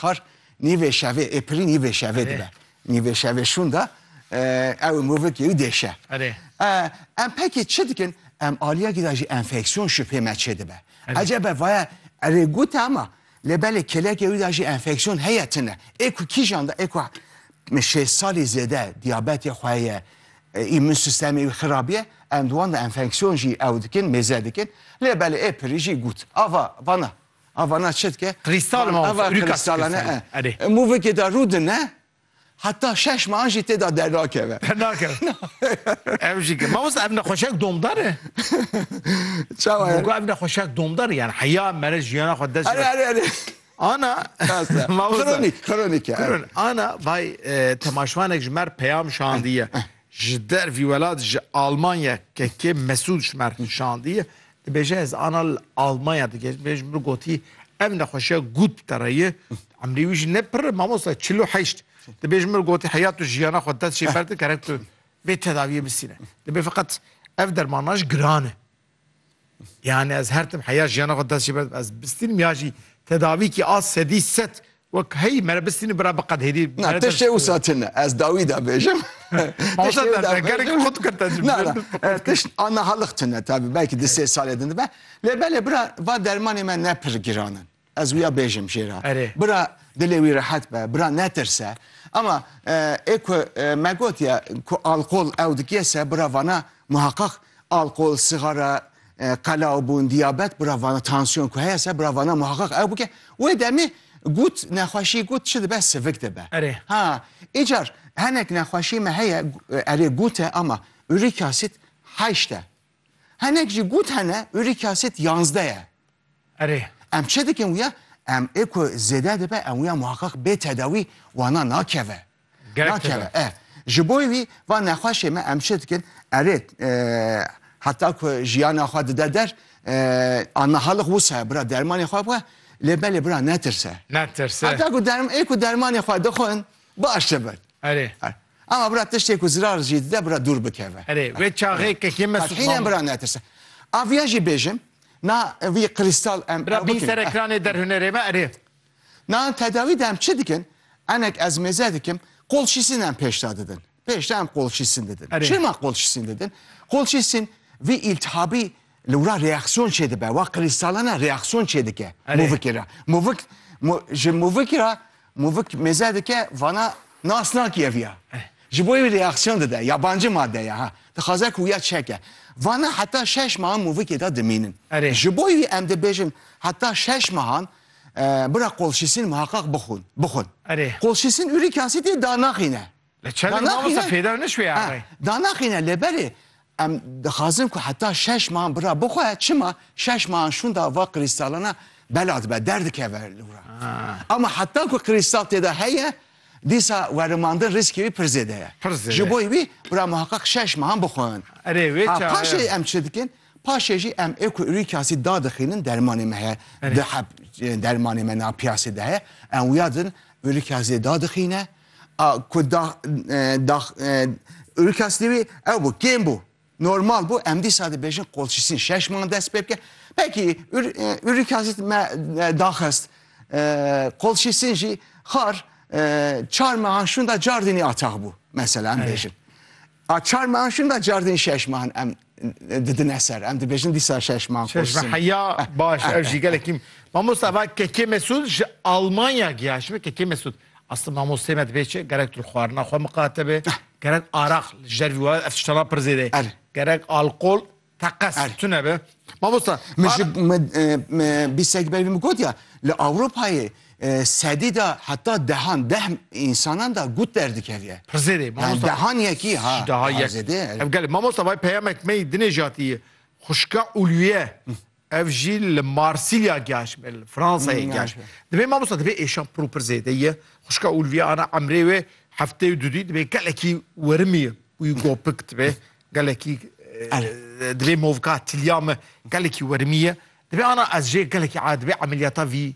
Kar nîvê şevê ê pirî nîvê şevê dibe. Nîvê şevê şûn de ew ê movik yê wî dêşe. Em pekî çi dikin? Em aliyekî de jî enfeksiyon şubhê me çêdibe. Ecebe vaye erê gote ama lê belê kêlekê wî de jî enfeksiyon heye tune. Ê ku kîjan de ê ku şêst salî zêde diyabetê xwe heye, îmûn sîstemê wî xirab ye, em di wan de enfeksiyon jî ew dikin mêze dikin. Lê belê ê pirî jî got. Ava vana A vana çi dike? Krîstal ma Ava krîstalane e. Erê. Mûvikê de rû dine heta şeş mehan jî tê de dernakeve. Dernakeve. Ev jî ke. Mamosta ev nexweşek domdar e? Çawa ye? Gogo ev nexweşek domdar e yani heya mere jiyana xwe dest. Erê erê erê. Ana mamosta. Kronîk, kronîk e. Kron. Ana vay temaşvanek ji mer peyam şandiye. Ji dervî welat ji Almanya kekê Mesûd ji mer şandiye. Dibêje ez ana li Almanya digihîşt vê ji min gotî ev nexweşiya gût bi te re ye. Emrê wî jî ne pirr e mamosta çil û heşt. Dibê ji min gotî heya tu jiyana xwe dest jê berdin gerek tu vê tedaviyê bisîne. Dibê feqet ev dermana ji giran e. Yanî ez her tim heya jiyana xwe dest jê berdim ez bistînim ya jî tedavîkî a sedî sed Wek hey mere bistînî bira bi qed hêdî. Na tiştê wisa tune. Ez dawî de bêjim. Tiştê wisa tune. Gerek xut kir te jim. Na na. Tişt ana halix tune tabi. Belki di sê salê din dibe. Lê belê bira va dermanê me ne pir giran in. Ez wîya bêjim jê re. Erê. Bira dilê wî rehet be. Bira netirse. Ama ê ku me gotiye ku alkol ew dikêse bira vana muheqeq alkol, sîgara, Qela û bûn diyabet bira vana tansiyon ku heye ser bira vana muheqeq ew bike. Wê demê got nexweşî got çi dibe sivik dibe. Erê. Ha îcar henek nexweşî me heye erê got e ama uric acid heşt e. Henek jî got hene uric acid yanzdeh e. Erê, em çi dikin wîya? Em ê ku zêde dibe em wîya muheqeq bê tedawî wana nakeve. Gerek tede. Nakeve. E. Ji bo wî va nexweşê me em çi dikin? Erê, e, heta ku jiyana xwe dide der, e, ana hal xwe wisa ye bira dermanê xwe bixwe, lê belê bira netirse. Netirse. Heta ku derm ê ku dermanê xwe dixwin baş dibin. Erê. Er. Ama bira tiştê ku zirar jî dide bira dûr bikeve. Erê wê çaxê kekê me Qet hîn em bira netirse. A viya jî bêjim na vî krîstal em Bira bîn ser ekranê derhunerê me erê. Na tedawî de em çi dikin? Enek ez mêze dikim qolşîsîn em pêşda didin. Pêşda em qolşîsîn didin. Çima qolşîsîn didin? Qolşîsîn vî îltihabî Li wira reaksiyon çêdibe, wa qilî salane reaksiyon çêdike movik ra. Movik ji movik ra movik mêze dike vana nas nakiye viya. Ji bo wî reaksiyon dide, yabancî made ya ha. Dixwaze ku ya çeke. Vana heta şeş mehan movikê de dimînin. Ji bo wî em dibêjin heta şeş mehan bira kolşîsîn muheqeq bixwin. Kolşîsîn urîk yasîtî danaxîne. Li çendek mamosta fêda nişwê erê. Danaxîne lê belê em dixwazin ku heta şeş man bira bixwe çima şeş man şûnda va krîstalana bela dibe derdikeve li wira. Ama heta ku krîstal têda heye dîsa werimandin rîskê wî pir zêde ye. Pir zêde. Ji bo wî bira muheqeq şeş man bixwin. Erê wê çaye. Paşê em çi dikin? Paşê jî em ê ku ûrîk asîd dadixînin dermanê me heye. Di heb dermanê me na piyasê de heye. Em wiyadin ûrîk asîdê dadixîne. A ku da da Urkastî wî ew bû kêm bû. Normal bû em dîsa dibêjin qolçîsîn şeş man dest pê bike. Pekî Urkastî me daxist qolçîsîn jî xar çar mehan şûn da cardînî ataq bû. Mesela em bêjin. A çar mehan şûn da cardînî şeş mehan em didine ser. Em dibêjin dîsa şeş man Şeş qursim. heya baş ev jî gelekî Mamosta va Kekê Mesûd ji Almanya giya ji Kekê Mesûd Asli mamostê me dibê çi gerek tu xwarina xwe miqate be gerek araq li ji dervî wa ev tiştana pir zêde ye gerek alqol teqes tune be Mamosta Min ji min bîsek berî min gotiya li Ewropayê Sedî de heta dehan deh însanan de gut derdikevye. Pirzêdê mamosta. Yani dehan yekî ha. Ji deha yek. Ev gelê mamosta vay peyamek me yî dinê jatî yê. Xwişka Ulwiye ev jî li Marsilya giyaş me li Fransayê giyaş. Divê mamosta divê êşan pir û pir zêde ye. Xwişka Ulwiye ana emrê wê hefteyê du dî divê gelekî werimî wî gopik dibe. Gelekî divê movka tilya me gelekî werimî ye. Divê ana ez jê gelekî a divê emeliyata vî